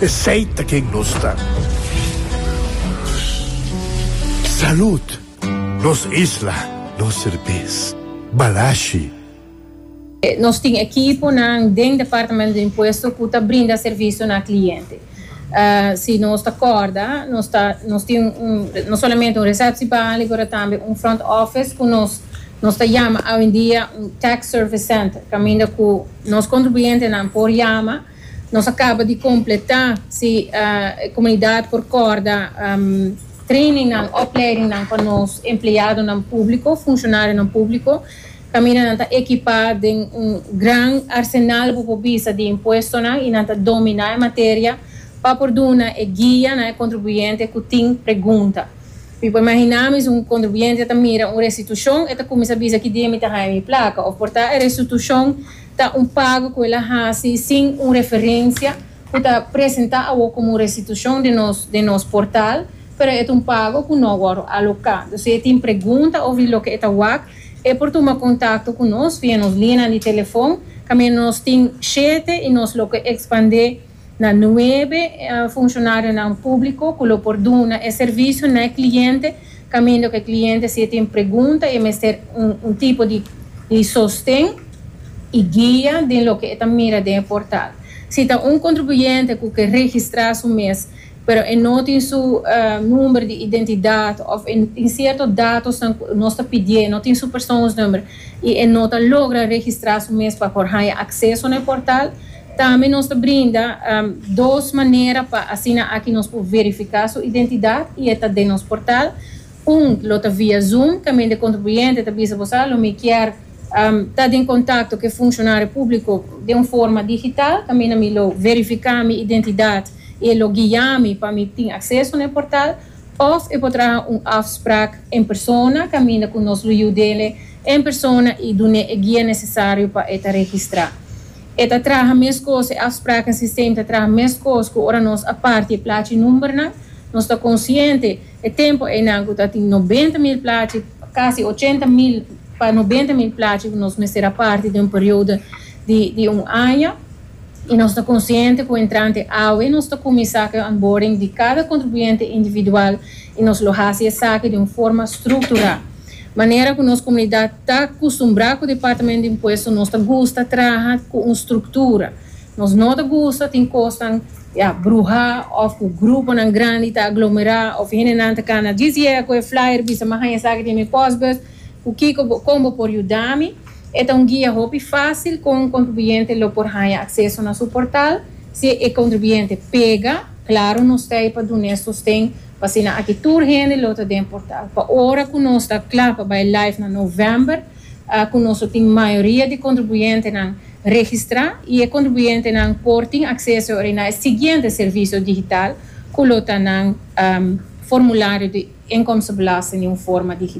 Esey ta ken nos ta. Salud! Nos isla, nos serbes. Balashi. Nos tin ekiponan den Departamento di Impuesto cu ta brinda servicio na cliente. Si nos ta corda, nos ta, nos tin un, no solamente un receptiebali, pero tambe un front office cu nos, nos ta yama awendia un tax service center, caminda cu nos contribuyentenan por yama. Nos a caba di completa si e comunidad por corda trainingnan, opleidingnan pa nos empleadonan publico, funcionarionan publico. Caminda nan ta equipa den un gran arsenal bo por bisa di impuestonan y nan ta domina e materia pa por duna e guia na e contribuyente cu tin pregunta. Mi por imagina mi si un contribuyente ta mira un restitucion e ta cuminsa bisa, Ki dia mi ta haya mi placa? Of por ta e restitucion Ta un pago cu el a haci sin un referencia cu ta presenta awo como un restitucion den nos den nos portal, pero e ta un pago cu no a wordo aloca. Dus si e tin pregunta of di loke e ta wak, e por tuma contacto cu nos via nos lineanan di telefon, caminda nos tin shete y nos lo ke expande Na nuebe funshonarionan públiko ku lo por duna e servisio na e kliente kaminda ku e kliente si e tin pregunta i e mester un tipo di sosten i guia den loke e ta mira den e portal. Si ta un kontribuyente ku ke registrá su mes pero e no tin su number di identidat òf e tin sierto datosnan ku nos ta pidié, no tin su persoonsnumber i e no ta logra registrá su mes pa por haña akseso na e portal, Tambe nos ta brinda dos manera pa asina aki nos por verifiká su identidat i e ta den nos portal. Un lo ta via Zoom, caminda e contribuyente ta bisa boso, lo mi kier ta den contacto cu e funcionario público den un forma digital, caminda mi lo verifiká mi identidat i e lo guia mi pa mi tin acceso na e portal. Of e por traha un afspraak en persona, caminda cu nos lo yud'ele en persona i dun'é e guia necesario pa e ta registrá. E ta traha meskos, e afspraken sistem ta traha meskos ku ora nos a parti e plachi numbernan. Nos ta konsiente e tempu einan ku ta tin nobenta mil plachi, kasi ochenta mil pa nobenta mil plachi ku nos mester a parti den un periodo di di un aña. I nos ta konsiente ku entrante awe nos ta kuminsá ku e onboarding di kada kontribuyente individual i nos lo hasi esaki den un forma strukturá. Manera ku nos komunidat ta kustumbrá ku Departamento di Impuesto nos ta gusta traha ku un struktura. Nos no ta gusta tin kosnan ya bruhá òf ku gruponan grandi ta aglomerá òf hendenan ta kana djis yega ku e flyer bisa mi haña esaki den mi pòsbus ku kiko bo kon bo por yuda mi. E ta un guia hopi fásil kon un kontribuyente lo por haña akseso na su portal. Si e kontribuyente pega, klaru nos ta ei pa dun'é sosten Asina aki tur hende lo ta den portal. Pa ora cu nos ta cla pa bay live na november, cu nos lo tin mayoria di contribuyentenan registra y e contribuyentenan por tin acceso awor na e siguiente servicio digital cu lo ta nan formulario di inkomstenbelasting di un forma digital.